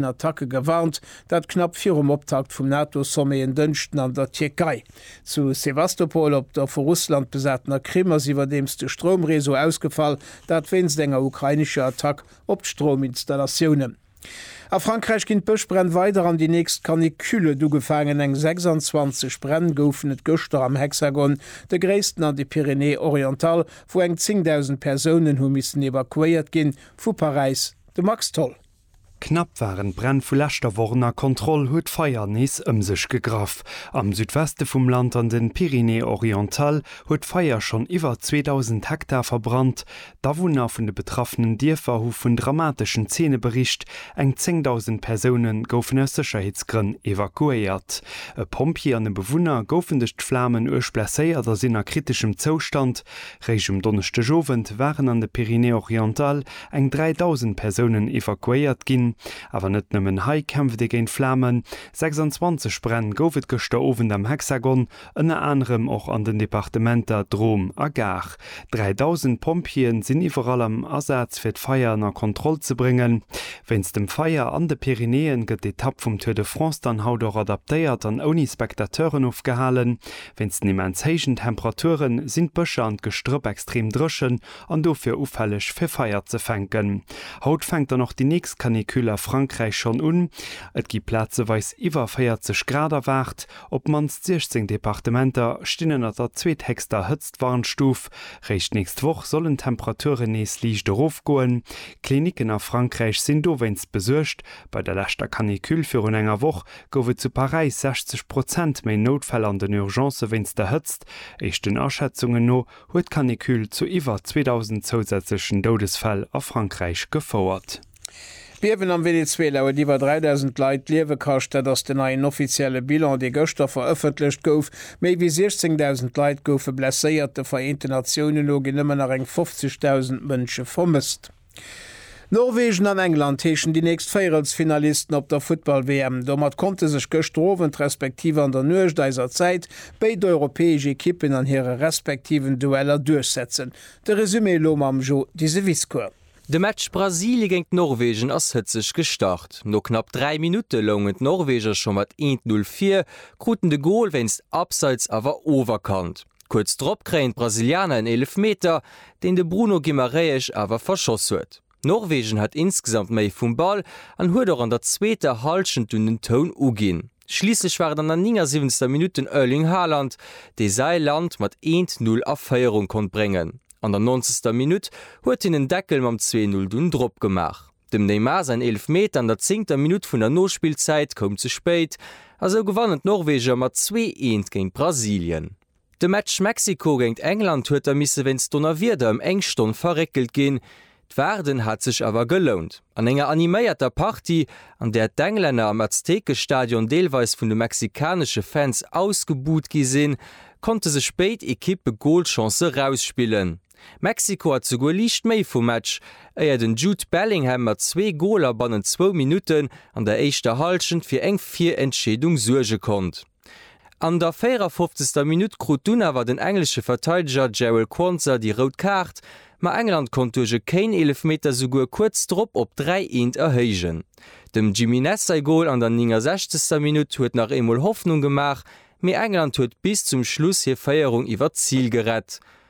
direkten Attacke gewarnt, dat knapp virum Optakt vum NATO-Sommet en Dënschden an der Tierkei. Zu Sewastopol op der vu Russland besatener Krim ass iwwerdeems de Stroumreseau ausgefall, dat wéinst enger ukrainescher Attack op d'Strouminstallatiounen. A Frankräich ginn d'Bëschbränn weider an déi nächst Canicule huet ugefaangen. Eng 26 Bränn goufen et gëschter am Hexagon, de gréissten an de Pyrénées orientales, wou eng 10.000 Persounen hu missen evakuéiert ginn. Vu Paräis de Max Tholl. Knapp waren d'Bränn vu leschter Woch ënner Kontroll, huet d'Feier nees ëm sech gegraff. Am Südweste vum Land an den Pyrénées-Orientales huet d'Feier schonn iwwer 2.000 Hektar verbrannt. D'Awunner vun de betraffenen Dierfer hu vun dramateschen Zeene bericht, eng 10.000 Persoune goufen aus Sécherheetsgrënn evakuéiert. E Pompjee an e Bewunner goufen duerch d'Flamen uerg blesséiert a sinn a kriteschem Zoustand. Réischt um Donneschdegowend waren an de Pyrénées-Orientales eng 3.000 Persounen evakuéiert ginn. Awer net nëmmen hei kämpft ee géint Flamen, 26 Bränn gouf et gëschter Owend am Hexagon, ënner anerem och an den Departementer Drôme a Gard. 3.000 Pompjeeë sinn iwwerall am Asaz fir d'Feier ënner Kontroll ze bréngen. Wéinst dem Feier an de Pyrenäen gëtt d'Etapp vum Tour de France dann haut och adaptéiert an ouni Spectateuren ofgehalen. Wéinst den immens héijen Temperaturen sinn d'Bëscher an d'Gestrëpp extrem dréchen, an dofir ufälleg fir Feier ze fänken. Haut fänkt dann och déi nächst Canicule a Frankräich schonn un. Et gi plazeweis iwwer 40 Grad erwaart. Op d'mannst 16 Departementer stinn ënner der zweethéchster Hëtztwarnstuf. Réischt d'nächst Woch sollen d'Temperaturen nees liicht erofgoen. Klinicken a Frankräich sinn dowéinst besuergt. Bei der leschter Canicule virun enger Woch gouf et zu Paräis 60 Prozent méi Noutfäll an den Urgencë wéinst der Hëtzt. Éischten Aschätzungen no huet d'Canicule zu iwwer 2.000 zousätzlechen Doudesfäll a Frankräich gefouert. D'Biewen am Venezuela huet iwwer 3.000 Leit d'Liewe kascht. Dat ass den neien offizielle Bilan, dee gëschter verëffentlecht gouf. Méi wéi 16.000 Leit goufe blesséiert. De Vereenten Natiounen no ginn ëmmer nach eng 50.000 Mënsche vermësst. Norwegen an England heeschen déi nächst Véierelsfinalisten op der Futtball-WM. Domat konnte sech gëschter Owend respektiv an der Nuecht eiser Zäit béid europäesch Ekippen an hire respektiven Dueller duerchsetzen. De Resumé elo mam Jo Diseviscourt. De Match Brasilie géint Norwegen ass hëtzeg gestart. No knapp 3 Minutte loungen d'Norweger scho mat 1, 0 vir, kruten de Gol wéinst Abseits awer oferkannt. Kuerz drop kréien d'Brasilianer en Eelefmeter, deen de Bruno Guimarães awer verschoss huet. Norwegen hat insgesamt méi vum Ball an huet och an der zweeter Hallschent dunn den Toun uginn. Schliisslech war et an der 79. Minutt den Erling Haaland, dee säi Land mat 1:0 a Féierung konnt bréngen. An der 90. Minutt huet hien den Deckel mam 2:0 dunn dropgemaach. Dem Neymar säin Eelefmeter an der zéngter Minutt vun der Nospillzäit koum ze spéit a sou gewannen d'Norweger mat zwee eent géint Brasilien. De Match Mexiko géint England huet da misse wéinst Donnerwieder ëm eng Stonn verréckelt ginn. D'Waarden hat sech awer gelount. An enger animéierter Partie, an där d'Englänner am Aztekestadion deelweis vun de mexikanesche Fans ausgebuht gi sinn, konnte sech béid Ekippe Golchancë rausspillen. Mexiko hat souguer liicht méi vum Match, éier den Jude Bellingham mat zwee Goler bannent zwou Minutten an der éischter Hallschent fir eng Virentscheedung suerge konnt. An der 54. Minutt krut dunn awer den englesche Verteideger Jarell Quansah déi rout Kaart, ma England konnt duerch e Kane-Eelefmeter souguer kuerz drop op 3 eent erhéijen. Dem Jimenez säi Gol an der 69. Minutt huet nach eemol Hoffnung gemaach, mee England huet bis zum Schluss hir Féierung iwwer d'Zil gerett.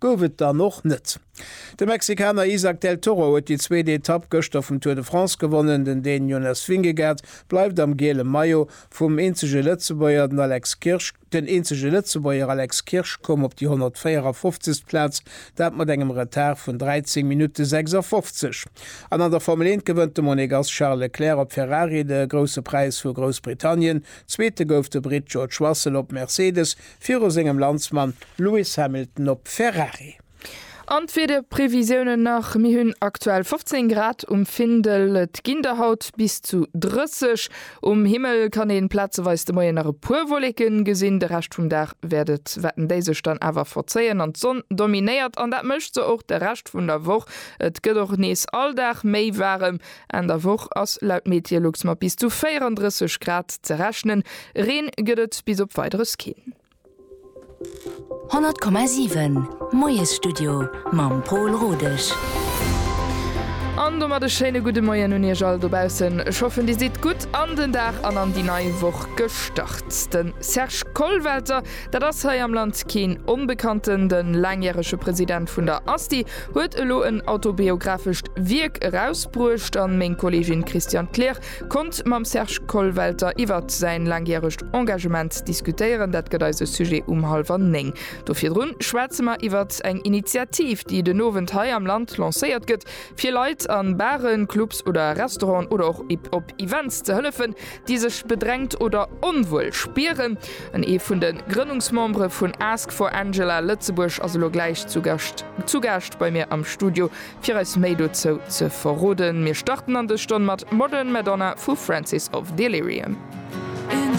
Gouf et dann och net. De Mexikaner Isaac Del Toro huet déi zweet Etapp gëschter vum Tour de France gewonnen. Den Dän Jonas Vingegaard bleift am giele Maillot. Vum eenzege Lëtzebuerger, den Alex Kirsch, den eenzege Lëtzebuerger Alex Kirsch koum op déi 154. Plaz, dat mat engem Retard vun 13 Minutte 56. An an der Formel 1 gewënnt de Monegass Charles Leclerc op Ferrari de Grousse Präis vu Groussbritannien. Zweete gouf de Britt George Russell op Mercedes, viru sengem Landsmann Lewis Hamilton op Ferrari. An d'Wiederprevisiounen nach, Mir hunn aktuell 15 Grad um Findel, et ginn der haut bis zu 30. Um Himmel kann ee plazeweis de Moien nach e puer Wolleke gesinn, de Rescht vum Dag wäerten déi sech dann awer verzéien an d'Sonn dominéiert an dat mécht se och de Rescht vun der Woch. Et gëtt och nees all Dag méi waarem, Enn der Woch ass laut Meteolux mat bis zu 34 Grad ze rechnen, Reen gëtt et bis op Weideres keen. 100,7 Moiesstudio mam Pol Rodesch. An domat e schéine gudde Moien un Iech all dobaussen. Ech hoffen Dir sidd gutt an den Dag an an déi nei Woch gestart. De Serge Kollwelter, dat ass hei am Land keen Onbekannten. De laangjärege President vun der ASTI huet elo en autobiographescht Wierk erausbruecht an meng Kollegin Christiane Kleer konnt mam Serge Kollwelter iwwert säin laangjäregt Engagement diskutéieren. Dat gëtt eise Sujet um hallwer néng. Do virdrun schwätze mer iwwert eng Initiativ, déi den Owend hei am Land lancéiert gëtt, fir Leit an Baren, Clubs oder Restauranten oder och op Events ze hëllefen, déi sech bedrängt oder onwuel spieren. En ee vun de Grënnungsmembere vun Ask for Angela Lëtzebuerg ass elo gläich zu Gascht zu Gaascht bei mir am Studio, fir eis méi dozou ze verroden. Mir starten an dës Stonn mat Modern Madonna vu Francis of Delirium.